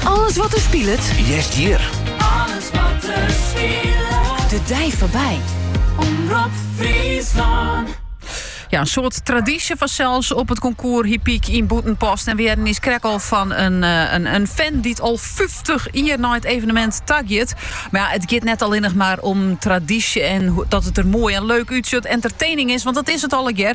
Alles wat der spilet. Hearst hjir. Alles wat der spilet. De dei foarby. Omrop Friesland. Ja, een soort traditie vanzelfs op het concours Hypiek in Boetenpost. En weer is krek al van een, eh, een, een fan die het al 50 jaar na het evenement tagjet. Maar ja, het gaat net alleen nog maar om traditie en dat het er mooi en leuk uitziet. Entertaining is, want dat is het allegear.